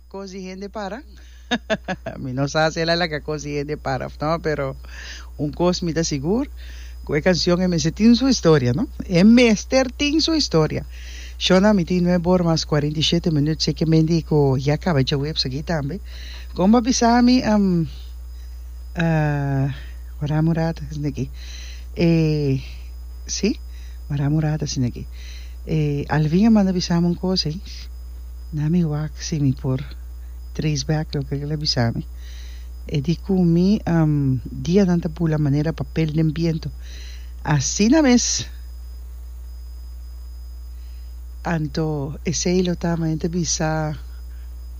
Cos di hende para? mi no sa si el a laga cos di hende para of no, pero un cos mi ta sigur, cu e cancion e mester tin su historia, no? E mester tin su historia. Shona, mi tin nuebe ora mas cuarenta y shete minuut sekemente cu ya caba dje web esaki tambe. Con bo a bisa mi, am, ah, ora a murada esaki, eh, si, ora a murada esaki. E Alvin a manda bisami un cos ey, na mi wak si mi por trace back loke el a bisami. E di cu mi dianan ta bula manera papel den biento. Asina mes! Anto esey lo ta manera ta bisa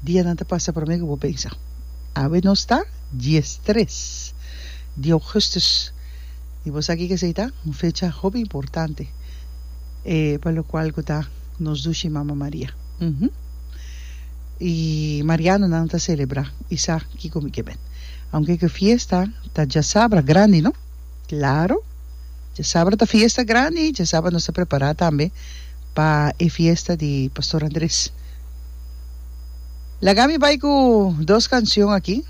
dianan ta pasa prome cu bo pensa. Awe nos ta diestres di augustus y bo sa kico esey ta? Un fecha hopi importante. E pa lo cual cu ta nos dushi Mama Maria. Uhm. Y Marianonan ta celebra y sa kico mi ke bend. Aunke cu e fiesta ta djasabra grandi, no? Claro. Djasabra ta fiesta grandi, djasabra nos ta prepara tambe pa e fiesta di Pastor Andres. Laga mi bay cu dos cancion aki.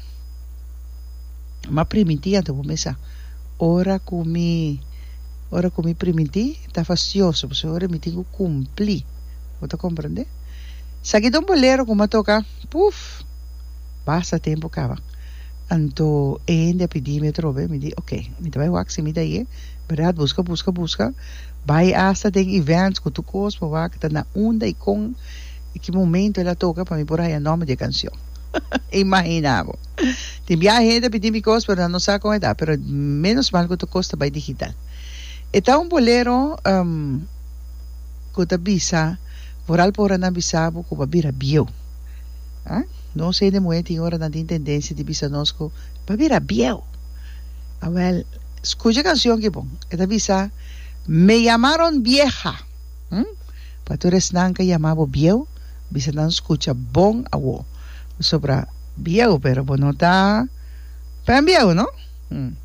M'a primiti anto cu mesa ora cu mi. Ora ku mi primintí ta fastioso pasobra ora mi tin ku kumplí. Bo ta komprendé? Esaki ta un bolero ku mi a toka, puf, basta tempu kaba. Anto e hende a pidí mi atrobe, mi di, oke, mi ta bai wak simi ta ye, bèrdat? Buska, buska, buska, bai asta den events ku tur kos pa wak ta na unda i kon i ki momento el a toka pa mi por haña nòmber di e kanshon. Imaginá bo! Tin biaha hende a pidi mi cos pero nan no sa con e ta pero menos mal cu ta cos ta bay digital. E ta un bolero um cu ta bisa vooral pa ora nan bisa bo cu bo a bira bieu. Huh? Nos hende muhe tin ora nan tin tendencia di bisa nos cu bo a bira bieu. Awel, scucha e cancion ki bon. E ta bisa, Me llamaron vieja. Hm? Pa tur esnan ke yama bo bieu, bisa nan skucha bon awo. Pasobra bieu, pero bo no ta pembieu, no? Hm.